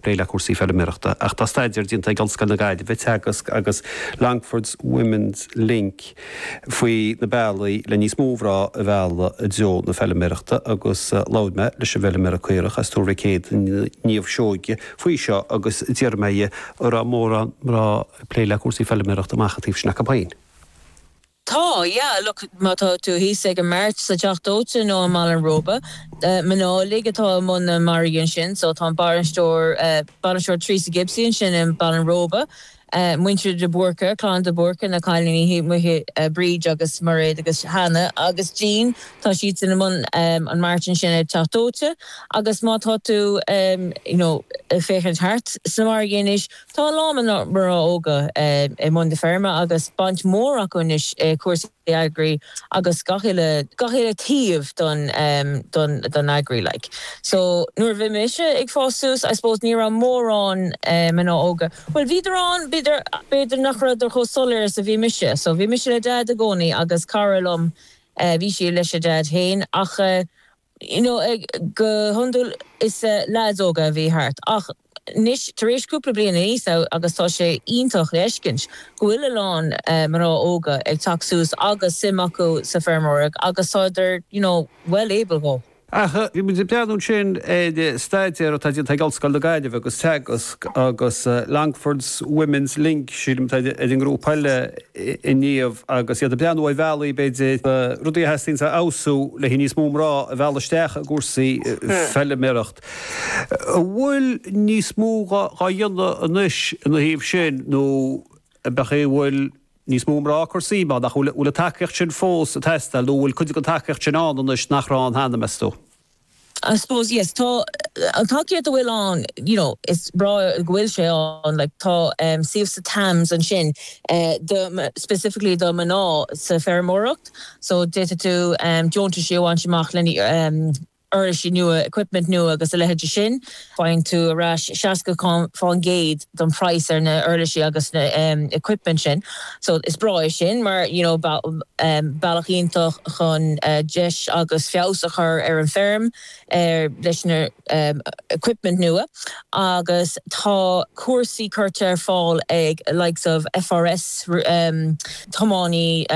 plé le cúrsaí feilméarachta ach tá staidéar déanta ag Ollscoil na Gaillimhe, Teagasc agus Longford's Women's Link faoi na bealaí le níos mó mná a mhealladh i dtreo na feilméarachta agus labhair mé leis an bhfeilméara caorach as Tuar Mhic Éadaigh, Niamh Seoige, faoi seo agus d'iarr mé di an raibh mórán mná ag plé le cúrsaí feilméarachta amach an taobh sin acu féin. Tá, yeah, look, má tá tú thíos ag an mart sa Teach Dóite nó i mBaile an Róba, mná uilig atá i mbun na margaí ansin, so tá an bainisteoir, bainisteoir Theresa Gibsey ansin i mBaile an Róba, muintir de Búrca, clann de Búrca, na cailíní thíos amuigh, Bríd agus Mairéad agus Hannah agus Jean, tá siadsan i mbun an mart ansin ag Teach Dóite agus má tá tú, you know, ag féachaint thart sna margaí anois, Tá a lán mná óga i mbun na feirme agus baint mhór acu anois i cúrsaí agri agus gach uile gach uile taobh don don don agri like so nuair a bhí mise ag fás suas I suppose ní raibh mórán mná óga bhuel bhíodar ann bhíodar ach b'fhéidir nach raibheadar chomh soiléir is a bhí mise so bhí mise le Daid i gcónaí agus cara liom bhí sí leis a Daid féin ach you know go hiondúil is leaids óga a bhí thart ach anois tar éis cúpla bliain aníos agus tá sé iontach le fheiscint go bhfuil a lán mná óga ag teacht suas agus suim acu sa feirmeoireacht agus tádar you know well able go. Ach bhí muid ag breathnú ansin ar staidéar atá déanta ag Ollscoil na Gaillimhe agus Teagasc agus Longford's Women's Link sílim atá ar an ngrúpa eile inniu agus iad ag breathnú ar bhealaí, b'fhéidir, na rudaí a theastaíonns a fheabhsú le haghaidh níos mó mná a mhealladh isteach i gcúrsaí feilméarachta. An bhfuil níos mó dhá dhéanamh anois ina thaobh sin nó an b'é go bhfuil níos mó mná ag cur suim ann ach an bhfuil an tacaíocht sin fós ag teastáil nó an bhfuil cuid den tacaíocht sin ann anois nach raibh ann cheana, meas tú? I suppose yes tá an tacaíocht a bhfuil ann you know is breá go bhfuil sé ann like tá taobh sa TAMS ansin do specifically do mná sa feirmeoireacht so d'fhéadfadh tú deontais a bhaint amach le na huirlisí nua equipment nua agus a leithéid de sin. Faigheann tú ar ais 60% den praghas ar na uirlisí agus na equipment sin. So is breá é sin mar you know bealach iontach chun deis agus feabhas a chur ar an feirm leis na equipment nua agus tá cúrsaí curtha ar fáil ag likes of FRS tiománaí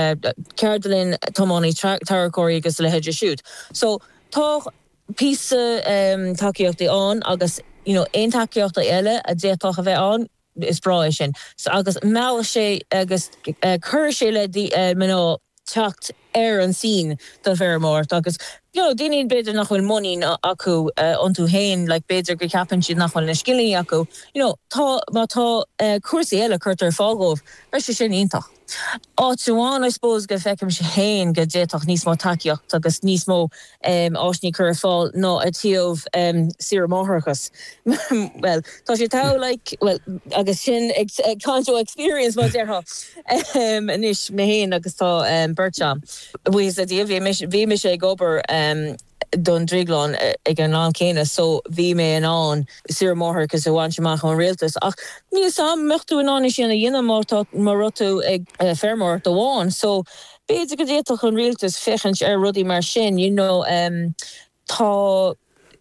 ceardlann tiománaí tarracóirí agus a leithéide siúd. So tá. píosa tacaíochtaí ann agus you know aon tacaíochtaí eile a d'fhéadfadh a bheith ann is breá é sin so agus meallfaidh sé agus cuirfidh sé le mná teacht ar an scene don fheirmeoireacht agus you know daoine b'fhéidir nach bhfuil muinín acu iontu féin like b'fhéidir go ceapann siad nach bhfuil na scileanna acu you know tá má tá cúrsaí eile curtha ar fáil dhóibh beidh sé sin iontach. Áit amháin I suppose go bhfeicimse féin go d'fhéadfadh níos mó tacaíocht agus níos mó áiseanna cur ar fáil ná i dtaobh saoire máithreachais bhuel tá sé togha like bhuel agus sin ag caint ó experience mar a déarfá anois mé féin agus tá beirt agam buíochas le Dia bhí mise ag obair don drioglann ag an am céanna so bhí mé in ann saoire máithreachais a bhaint amach ón rialtas ach níl a fhios agam an mbeadh tú in ann é sin a dhéanamh má tá má raibh tú ag feirmeoireacht amháin so b'fhéidir go d'fhéadfadh an rialtas féachaint ar rudaí mar sin you know em tá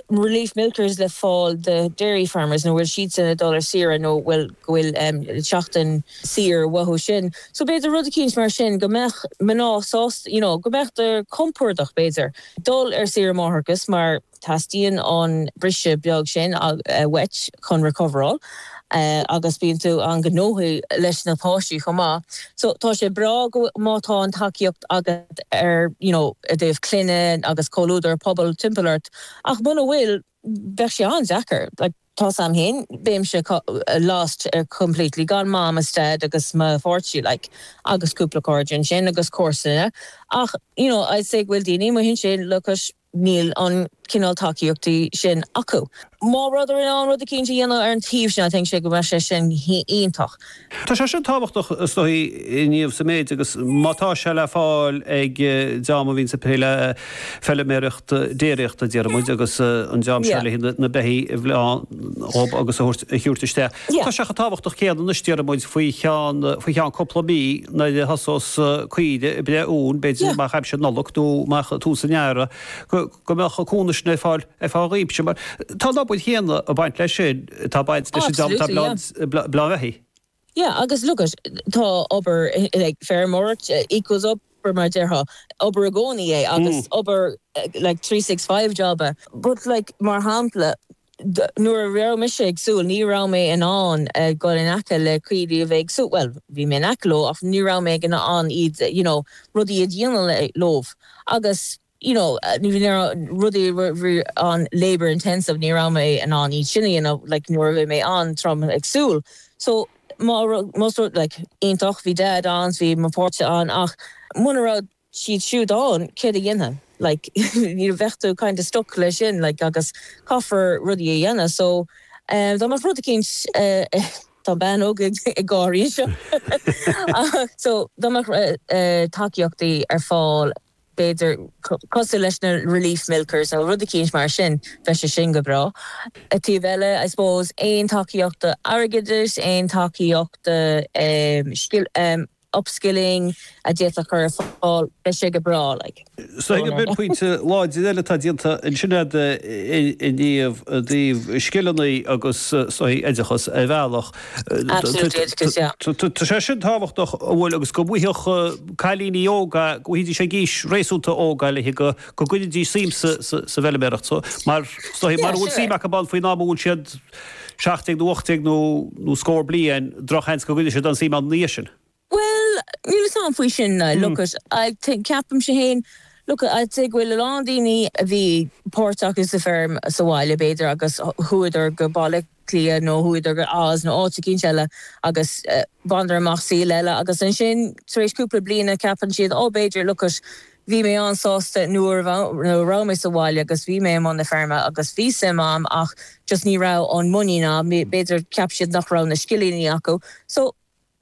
relief milkers le fáil do dairy farmers nuair a bhfuil siadsan ag dul ar saoire nó fiú go bhfuil em seachtain saor uathu sin. So b'fhéidir rud eicínt mar sin go mbeadh mná sásta you know go mbeidís compordach b'fhéidir dul ar saoire máithreachais mar teastaíonn an briseadh beag sin uait chun recoveráil agus bíonn tú an-ghnóthach leis na páistí chomh maith. So tá sé breá go má tá an tacaíocht agat ar you know i dtaobh clainne agus comhluadar pobal timpeall ort ach muna bhfuil bheadh sé an-deacair like. Tá's agam féin, bheinnse lost ar completely, gan mom is dad agus mo pháirtí like agus cúpla cairde ansin agus comharsana ach you know I'd say go bhfuil daoine amuigh ansin agus níl an cineál tacaíochtaí sin acu. Má beifear in ann rud eicínt a dhéanamh ar an taobh sin I think sé go mbeadh sé sin iontach. Tá sé sin tábhachtach is dóigh, a Shíomha, sa méid agus má tá sé le fáil ag dream a bhíonns ag plé le feilméaracht déiríochta déarfaidh muid agus an dream seo le haghaidh na beithí a bhleán dhóib agus a thabhairt isteach. Tá sé chomh tábhachtach céanna anois déarfaidh muid faoi cheann faoi cheann cúpla mí nuair a thosós caoirigh ag breith uan b'fhéidir amach aimsir Nollag nó amach tús an Earraigh go go mbeadh an cúnamh sin ar fáil ar feadh tréimhse mar tá an obair chéanna ag baint leis sin atá ag baint leis an dream atá ag bleán beithí. Yeah agus look it tá obair like feirmeoireacht equals obair mar a déarfá obair i gcónaí é agus obair like three six five job é but like mar shampla nuair a raibh mise ag súil ní raibh mé in ann ag dul in aice le caoirigh a bhí ag súil bhuel bhí mé in aice leo ach ní raibh mé ag in ann iad you know rudaí a dhéanamh leo agus you know na rudaí bhí an labour intensive ní raibh mé in ann iad sin a dhéanamh like nuair a bhí mé an-trom ag súil so má raibh más rud like iontach bhí dad ann so bhí mo pháirtí ann ach muna raibh siad siúd ann céard a dhéanfainn like you know bheadh tú kind of stuck leis sin like agus caithfear rudaí a dhéanamh so eh dá mbeadh rud eicínt eh tá bean óg eile ag gáirí anseo so dá mbeadh eh tacaíochtaí ar fáil b'fhéidir, cosúil leis na relief milkers nó rud eicínt mar sin, bheadh sé sin go breá. Taobh eile, I suppose, aon tacaíocht airgeadais, aon tacaíocht upskilling a d'fhéadfá a chur ar fáil, bheadh sé go breá, like. So sin pointe láidir eile atá déanta ansin agat i dtaobh scileanna agus is dóichí oideachas ar bhealach. Tá sé sin tábhachtach an bhfuil agus go bhfuighidh cailíní óga, go bhfuighidís é ag aois réasúnta óg le go, go gcuiridís suim sa bhfeiliméaracht so. Mara bhfuil suim acu ann faoin am a bhfuil siad 17 nó 18 nó scór bliain, drochsheans go gcuiridh siad aon suim ann ina dhiaidh sin. Bhuel, níl 'fhios a'm faoi sin, look it, I think, ceapaimse fhéin, look it, I'd say go bhfuil a lán daoine a bhí páirteach sa feirm sa bhaile b'fhéidir agus chuadar go Baile Átha Cliath nó chuadar go Oz nó áit eicínt eile agus bhaineadar amach saol eile agus ansin tar éis cúpla bliana ceapann siad oh b'fhéidir, look it, bhí mé an-sásta nuair a raibh mé sa bhaile agus bhí mé i mbun na feirme agus bhí suim a'm ach just ní raibh an muinín a'm, b'fhéidir cheap siad nach raibh na scileanna acu so.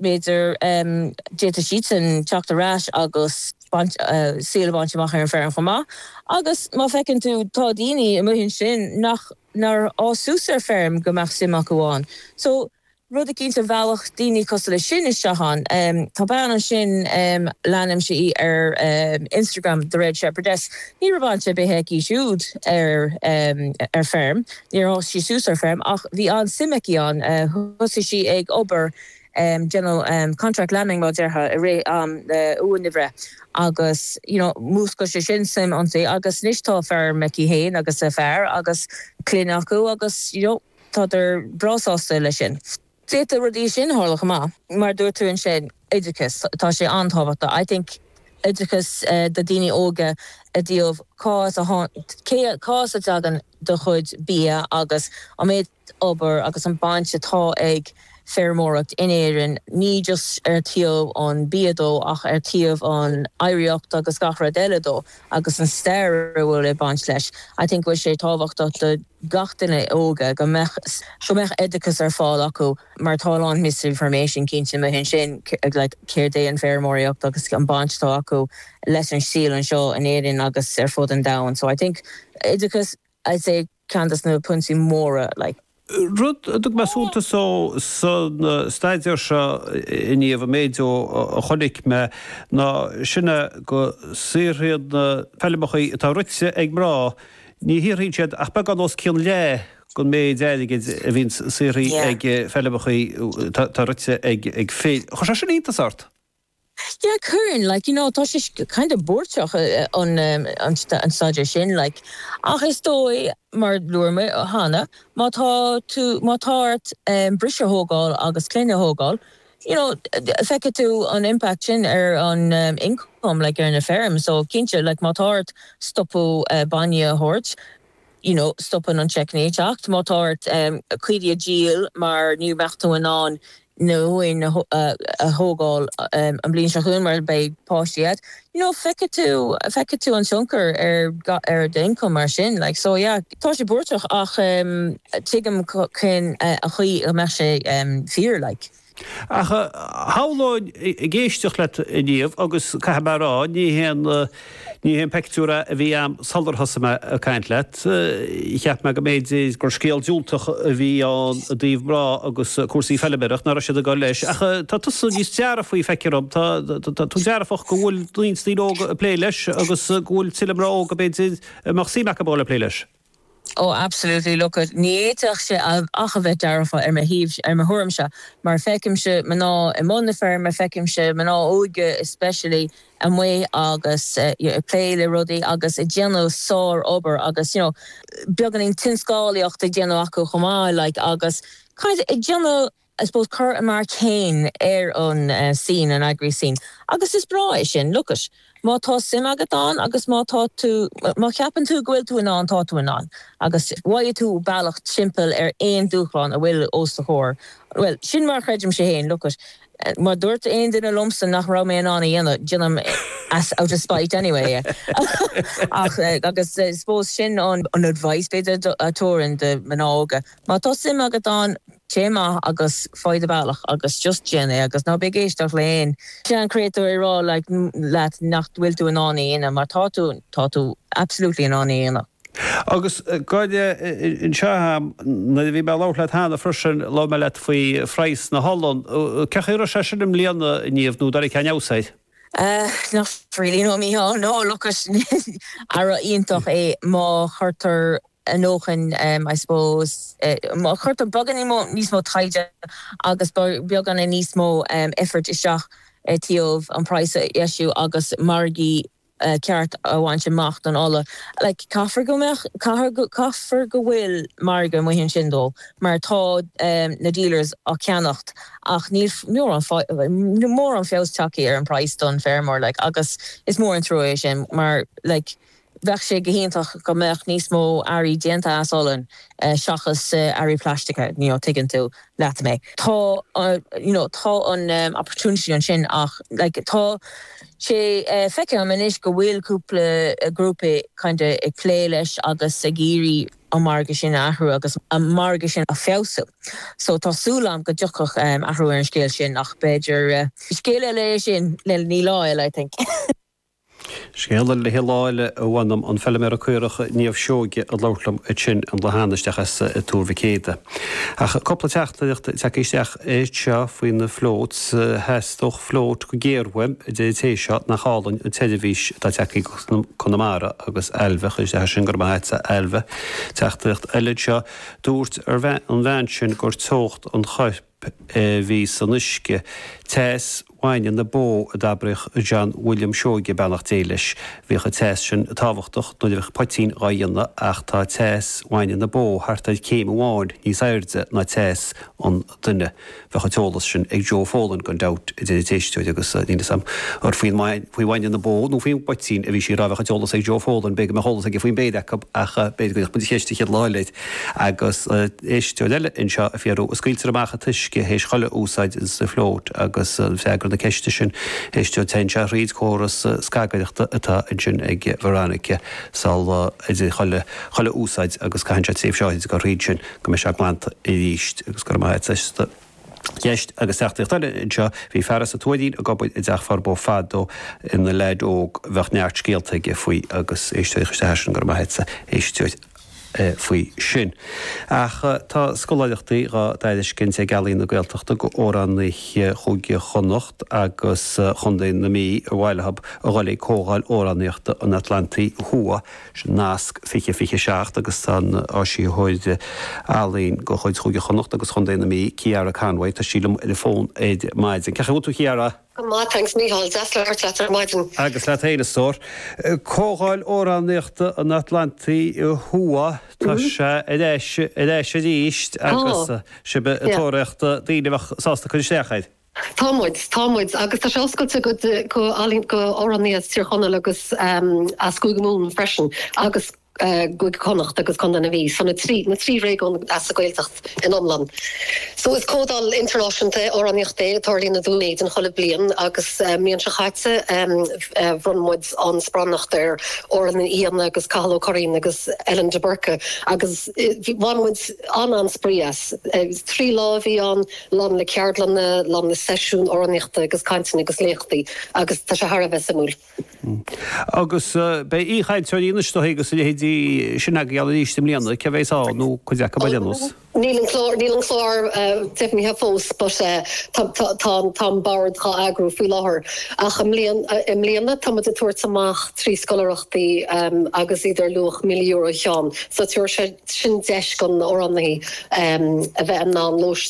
b'fhéidir, d'fhéadfadh siadsan teacht ar ais agus saol a bhaint amach ar an bhfeirm chomh maith. Agus má feiceann tú, tá daoine amuigh ansin nach, nár fhás suas ar feirm go mbeadh suim acu ann. So, rud eicínt a mheallfadh daoine cosúil leis sin isteach ann. Tá bean ansin, leanaimse í ar Instagram, The Red Shepherdess, ní raibh baint ar bith aici siúd ar feirm, Níor fhás sí suas ar feirm ach bhí an-suim aici ann. Thosaigh sí ag obair ag déanamh contract lambing mar déarfá i rith am na huainbhreithe agus you know mhúscail sé sin suim inti agus anois tá feirm aici féin agus a fear agus clann acu agus you know tádar breá sásta leis sin. D'fhéadfadh rudaí mar sin tarlú chomh maith. Mar a dúirt tú ansin, oideachas, tá sé an-tábhachtach. I think oideachas do daoine óga i dtaobh cá as a cé, cá as a dtagann do chuid bia agus an méid obair agus an bhaint atá ag feirmeoireacht in Éirinn, ní just ar thaobh an bia dó ach ar thaobh an oidhreacht agus gach rud eile dó. agus an stair a bhfuil baint leis. I think go bhfuil sé tábhachtach do gach duine óga go mbeadh, go mbeadh oideachas ar fáil acu mar tá a lán misinformation cinnte amuigh ansin like céard é an feirmeoireacht agus an baint atá acu leis an saol anseo in Éirinn agus ar fud an domhain. So I think oideachas I'd say. Cinnte, sin pointe mór. Rud a thug mé suntas dó sa staidéar seo a Niamh, an méid a chonaic mé ná sin é go saothraíonn, na feilmeachaí atá rite ag mná, ní shaothraíonn siad ach beagán os cionn leath den méid airgid a bhíonn saothraithe ag feilmeachaí atá rite ag fir. Gcuireann sé sin iontas ort? Yeah, cuireann. Like, you know, tá sé kind of buartach an staidéar sin, like, ach is dóigh, mar a dúirt mé cheana, má tá tú, má tá ort briseadh a thógáil agus clann a thógáil, you know, feicfidh tú an impact sin ar an income, like, ar an bhfeirm. So, cinnte, like, má tá ort stopadh bainne a thabhairt, you know, stopann an tseic, nó má tá ort caoirigh a dhíol mar ní bheidh tú in ann na huain a thógáil an bliain seo chugainn mar beidh páistí a'd you know feicfidh tú feicfidh tú an tionchar ar ar do income mar sin like so yeah tá sé buartach ach tuigim cén chaoi a mbeadh sé fíor like. Ach shamhlóinn, ag éisteacht leat a Niamh, agus caithfidh mé a rá, ní hé, ní hé an pictiúr a bhí a'm sular thosaigh mé ag caint leat. Cheap mé go mb'fhéidir gur scéal diúltach a bhí ann i dtaobh mná agus cúrsaí feilméarachta, nach raibh siad ag dul leis. Ach tá tusa níos dearfaí, feictear dhom, tá, tá tú dearfach go bhfuil roinnt daoine óga ag plé leis agus go bhfuil tuilleadh mná óga, b'fhéidir, go mbeadh suim acu a dhul ag plé leis. Oh absolutely, look it, ní fhéadfaidís ach a bheith dearfach ar mo thaobh, ar mo thuairimse, mar feicimse mná i mbun na feirme, feicimse mná óga especially amuigh agus ag plé le rudaí agus ag déanamh sár-obair agus you know beagáinín tionscálaíocht ag déanamh acu chomh maith like agus kind of ag déanamh I suppose cur a marc féin ar an scene, an agri scene. Agus is breá é sin. Look it, má tá suim agat ann agus má tá tú, má cheapann tú go bhfuil tú in ann, tá tú in ann. Agus gheobhaidh tú bealach timpeall ar aon dúshlán a bhfuil os do chomhair. Bhuel, sin mar a chreidimse féin. Look it, má dúirt aon duine liomsa nach raibh mé in ann a dhéanamh, déanaim out of spite anyway é. Ach, agus I suppose sin an advice b'fhéidir a thabharfainn do mhná óga. Má tá suim agat ann, téigh amach agus faigh do bhealach agus just déan é agus ná bí ag éisteacht le haon sean chréatúr ag rá leat nach bhfuil tú in ann é a dhéanamh mar tá tú, tá tú absolutely in ann é a dhéanamh. Agus gabh i leith anseo a'm, nuair a bhí mé a' labhairt leat cheana freisin, labhair mé leat faoi phraghas na holann, cé chaoi a raibh sé sin i mbliana, a Niamh, nó ar tháinig aon fheabhas air? Ahh, not really, no a Mícheál, no, look it, earra iontach é má chuirtear. ar ndóigh I suppose. Cuirtear beagán níos mó taighde agus beagán níos mó effort isteach i dtaobh an price a dheisiú agus margaí ceart a bhaint amach don ola. Like caithfear go mbeadh caithfear go bhfuil margadh amuigh ansin dó mar tá na dealers á ceannacht ach níl mórán níl mórán feabhas tagtha ar an price don feirmeoir like agus is mór an trua é sin mar like Bheadh sé go hiontach go mbeadh níos mó earraí déanta as olann seachas earraí plaistice, you know tuigeann tú leat mé. Tá you know tá an opportunity ansin ach like tá sé feicthe agam anois go bhfuil cúpla grúpa kinda ag plé leis agus ag iarraidh an margadh sin a athrú agus an margadh sin a feabhsú. So tá súil agam go dtiocfadh athrú ar an scéal sin ach b'fhéidir scéal eile é sin le haghaidh lá eile I think. Scéal eile le haghaidh lá eile a bhean ann, an feilméara caorach Niamh Seoige ag labhairt liom ansin an lá cheana isteach as Tuar Mhic Éada. Ach cúpla teachtaireacht tagtha isteach anseo faoi na floats. Theastódh float go géar uaim a deir an té seo, nach álainn an tseirbhís atá tagtha ag Conamara agus Ailbhe a chuir isteach é sin, gura maith a't a Ailbhe. Teachtaireacht eile anseo, dúirt an bhean sin gur teocht an choirp, P, a bhí san uisce. Teas bhainne na bó a d'abraíodh John William Seoige, beannacht Dé leis. Bhíodh an teas sin tábhachtach nuair a bheadh poitín dhá dhéanamh ach tá teas bhainne na bó thart ar céim amháin níos airde ná teas an duine. Bheadh an t-eolas sin ag Joe Folan gan dabht, a deir an t-éisteoir agus níl fhios a'm ar faoin faoi bhainne na bó nó faoin bpoitín a bhí sí a rá. Bheadh an t-eolas ag Joe Folan, b'fhéidir go mbeadh eolas aige faoin mbeirt acu ach b'fhéidir go gcuirfidh muid an cheist an chéad lá eile air. Agus éisteoir eile anseo ag fiafraí, An scaoiltear amach an t-uisce théis chuile úsáid sa Float? Agus freagra na ceiste sin, a éisteoir, téann sé thríd córas scagaireachta atá ansin ag Veronica sula idir chuile, chuile úsáid agus caitheann sé tréimhse áirid ag goil thríd sin go mbeidh sé glanta arís. Agus go raibh maith a't as do cheist. Agus teachtaireacht eile anseo, Bhí fear as an Tuairín ag obair i dTeach Furbo fadó ina leaid óg, bheadh neart scéalta aige faoi. Agus éisteoir a chuir isteach é sin, go raibh maith a't. Éisteoir. faoi sin. Ach tá scoláireachtaí dhá dtairiscint ag Ealaín na Gaeltachta go amhránaithe Chúige Chonnacht agus Chontae na Mí ar mhaith leob a dhul ag Comhdháil Amhránaíochta an Atlantaigh Thuaidh, sin nasc 2027 agus tá an t-áisitheoir ealaín de chuid Chúige Chonnacht agus Chontae na Mí, Ceara Conway, tá sí liom ar an bhfón ar maidin. Cén chaoi a bhfuil tú a Cheara? Go maith, thanks Micheál, deas labhairt leat ar maidin. Agus leat féin, a stór. Comhdháil Amhránaíochta an Atlantaigh Thuaidh, tá sé ar ais, ar ais arís agus sibh ag tóraíocht, daoine a bheadh sásta cur isteach air. Tá muid, tá muid. Agus tá sé oscailte go, go, go amhránaithe as Tír Chonaill agus as Cúige Mumhan freisin agus. Cúige Chonnacht agus Contae na Mí so na trí réigiún sa Ghaeltacht in iomlán. So is comhdháil idirnáisiúnta amhránaíochta é a tarlaíonn i Dún Éideann chuile bhliain agus an mbliain seo chaite bhronn muid an sparanacht ar Dhoireann Ní Ghlacáin agus Cathal Ó Curráin agus Ellen de Búrca agus bhain muid an-, an-spraoi as. Trí lá a bhí ann, lán le ceardlanna, lán le seisiúin amhránaíochta agus cainteanna agus léachtaí agus tá sé thar a bheith suimiúil. Agus beidh aoichainteoirí anois ar ndóigh agus a leithéidí sin agaibh ann arís i mbliana, cé a bheas ann nó cuid acu ar aon nós? Níl an clár deimhnithe fós but tá an bord dhá eagrú faoi láthair ach i mbliana tá muid ag tabhairt amach trí scoláireachtaí agus iad ar luach míle euro an ceann so tabharfaidh sin deis don amhránaí a bheith in ann lóistín